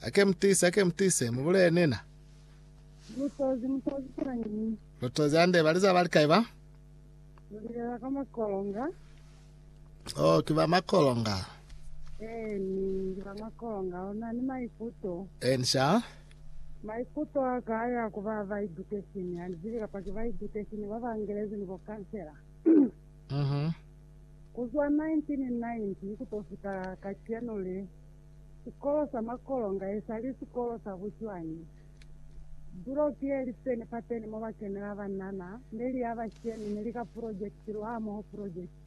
Ake mutise, ake mutise, mubulele nina. Lutozi, mutozi fela nyi. Lutozi ande baliza bali kai ba? Mulilela ka makolonga. Oh, ki ba makolonga. Eh, ni ba makolonga. Ona ni maikuto. Eh, nisha. Maikuto a ka ya ku ba ba education. Ani zibi kapa ki ba education ba ba Angelezi ni bo kansela. Mhm. Kuzwa 1990 kutofika kacenu le. Sikolo sa Makolonga esali sikolo sa bucwañi. Buloki ye li peni pateni mo ba kenela banana ne li ya bashemi ne li ka pulojekiti lwa hamoho pulojekiti.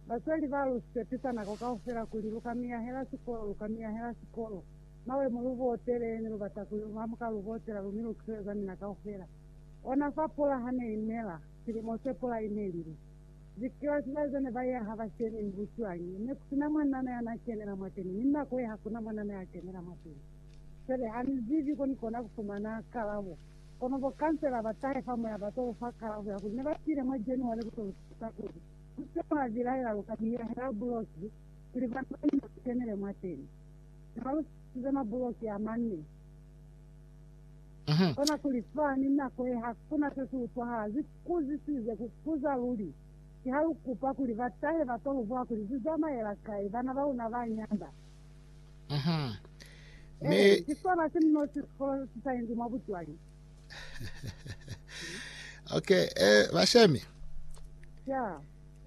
Basweli ba lu sepisa nako kaufela kuli lu ka miyahela sikolo, lu ka miyahela sikolo. Mawe mo lu botele, ne lu bata kuli lu hamuka lu botela lu mi lu kiseleza mina kaufela. Ona fa pula ha ne i nela, silimo se pula i nelile. Zikreste ba zane ba ya ha ba kene ni bucwañi. Ne ku si na mwanana ya na kenela mwateni, ni nako ye ha ku na mwanana ya kenela mwateni. Fele, ha ni zibi ko ni kona ku fumana kalabo. Kono bo kansela ba tahe fa moya ba to lu fa kalabo ya kuli ne ba tile mwa January ku to lu tusa kuli lu se lwa bilaela lu ka biyehela buloki kuli bana ba luna ba kenele mwateni. Ne ba lu tusize mabuloki a mane. Kona kuli fa ni nako ye ha ku na se si utwahala. Ku zisize ku kuza luli. Ki ha lu kupa kuli ba tahe ba to lu bula kuli zu zamaela kai bana ba luna ba nyanda. Ee, ki sona si muno si sikolo si sa inzi mwa bucwali. Ok, ee, bashemi. Ya.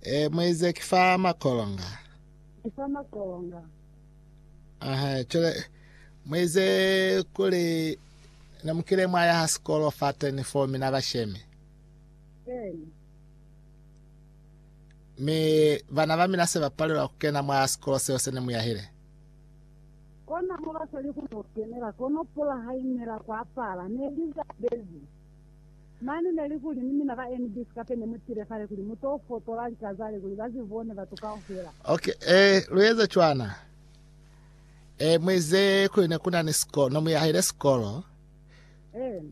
Ee, muize ki fa makolonga. Ki fa makolonga. Aha, cwale muize kuli namukile mwaya ha sikolo fateni fo mina bashemi. Bene. Mi bana ba mina se bapalelwa kukena mwa sikolo seo se ne muyahile. Kona mo basali kuno kenela, kono pula hainela kwapala, ne lizabezi. Mane neli kuli ni mina ba NB sikape ne mutile kale kuli mu to fotola lika zale kuli ba zi bone batu kaufela. Ok eh lu eze cwana eh mwezi kuli ne kuna ni sikolo no muyahile sikolo Eh,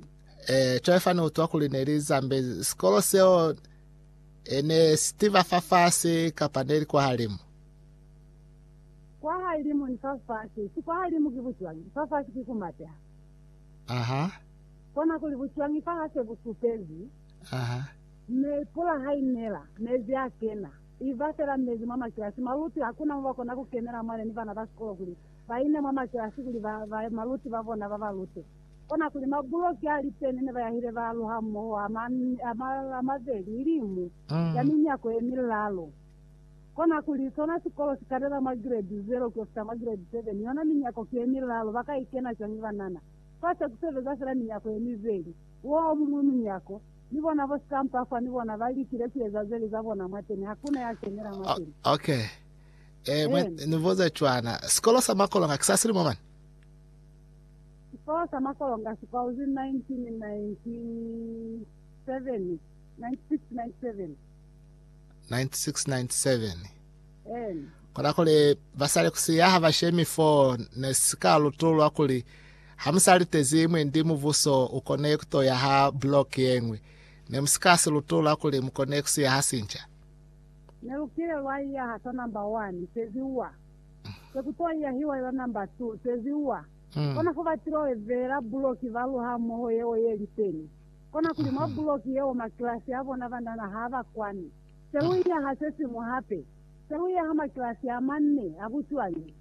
eh cwale fani utwa kuli ne li zambe sikolo seo eh, ne sitiva fafasi kapa ne li kwa halimu kwa halimu ni fafasi. Si kwa halimu ki bucwangi. Fafasi ki kumateha. aha Kona kuli bucwañi fa hase bu supezi, mi pula ha i nela, mezi a kena, i ba fela mezi mwa makilasi. Maluti hakuna mo ba kona ku kenela mwale ni bana ba sikolo kuli ba ine mwa makilasi kuli baluti ba bona ba ba lute. Kona kuli mabuloki a liteni ne ba yahile ba lu hamoho a mabeli ili mu ya minyako ye milalo. Kona kuli sona sikolo si kanela mwa giredi zero ku yo fita mwa giredi seven, yona minyako ki ye milalo, ba ka i kena cwañi banana? Fa se ku sebeza fela minyako ye mibeli, woo muñwi munyako, ni bona bo sikampafa ni bona ba likile ku eza zeli za bona mwateni, hakuna ya kenela mwateni. Ok. Eh, mwa Amen. ni buza cwana. Sikolo sa makolonga ki sa silimo mani? Sikolo sa makolonga si kwauzi 1997, 96, 97. 9697. Kola kuli basali kusiya ha ba shemi fo ne si ka lutulwa kuli ha mu sa litezi mwendi mubuso u kone ku to yaha block ye ñwi, ne mu si ka si lutula kuli mu kone ku siya ha sinca. Ne lu kile lwa iyaha sa number one, sezi uwa. Se ku to iyahiwa ila number two, sezi uwa. Kona fo ba tilo evela block ba lu hamoho yeo ye li teni. Kona kuli mwa block yeo makilasi a bona banana ha ba kwani. Se lu iya ha se siñwi hape. Se lu iya ha makilasi a manne a bucwañi.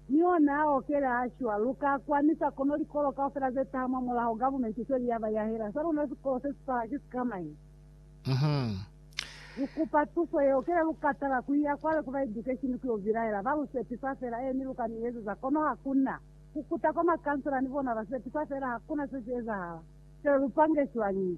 Ni ona a okela a shwa. Lu ka kwanisa kono likolo kaufela ze taha mwa mulaho, gavumenti feli ya ba yahela sa luna sikolo se si taha ki sikamañi? Lu kupa tuso yeo kele lu ka tala ku iya kwale ku ba edukeshini ku yo bilaela. Ba lu sepisa fela, Eeni, lu ka ni ezeza. Kono ha ku na. Ku kuta kwa makansela ni bona ba sepisa fela, ha ku na se si ezahala. Kele lu pange cwañi?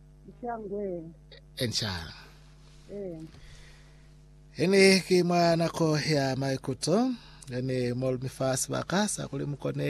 Nca ngwe. E, nca. E. Ini ki mwa nako ya maikuto, ini mo lumi fa sibaka sa kuli mu kone